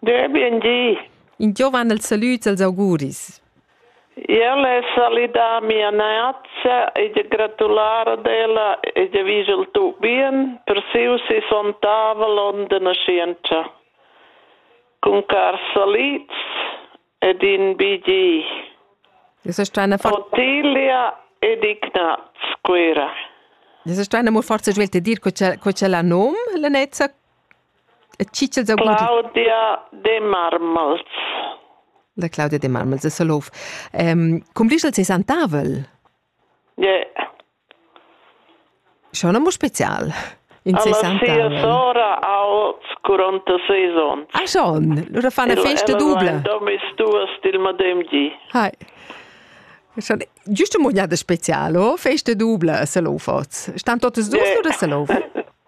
Dö, bien di. In giovan els salüds als auguris. El è salidà mia neazza e de gratular ad ella e de vigel tu bien per siu si sontavel on de nascienza. Cun car salids ed in bigi. Es ist eine Ottilia ed Ignaz Quera. Es ist eine molt forza svelte dir co c'è la nom, la nezza E chi ch'els ha gudü? Claudia de Marmels. La Claudia de Marmels de Salouf. Ehm, cum disch el seis antavel? Yeah. Schon un spezial. In Alla sia sora ha 46 ans. Ah schon? Lura fan la festa dubla. Domis duas dil madem di. Hai. Schon giusto mognada specialo, festa dubla a Salouf oz. Stan totes dus yeah. oder Salouf?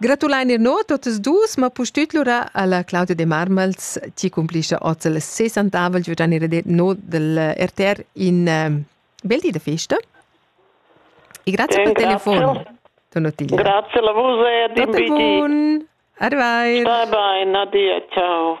Gratulein ir no totas dus, ma pustüt lura alla Claudia de Marmals, chi cumplischa oz il sessantavel giu dan ir no del RTR in uh, bel di da festa. E grazie per il telefono. Donottilla. Grazie a vos e di bidi. Arrivai. Bye bye, Nadia, ciao.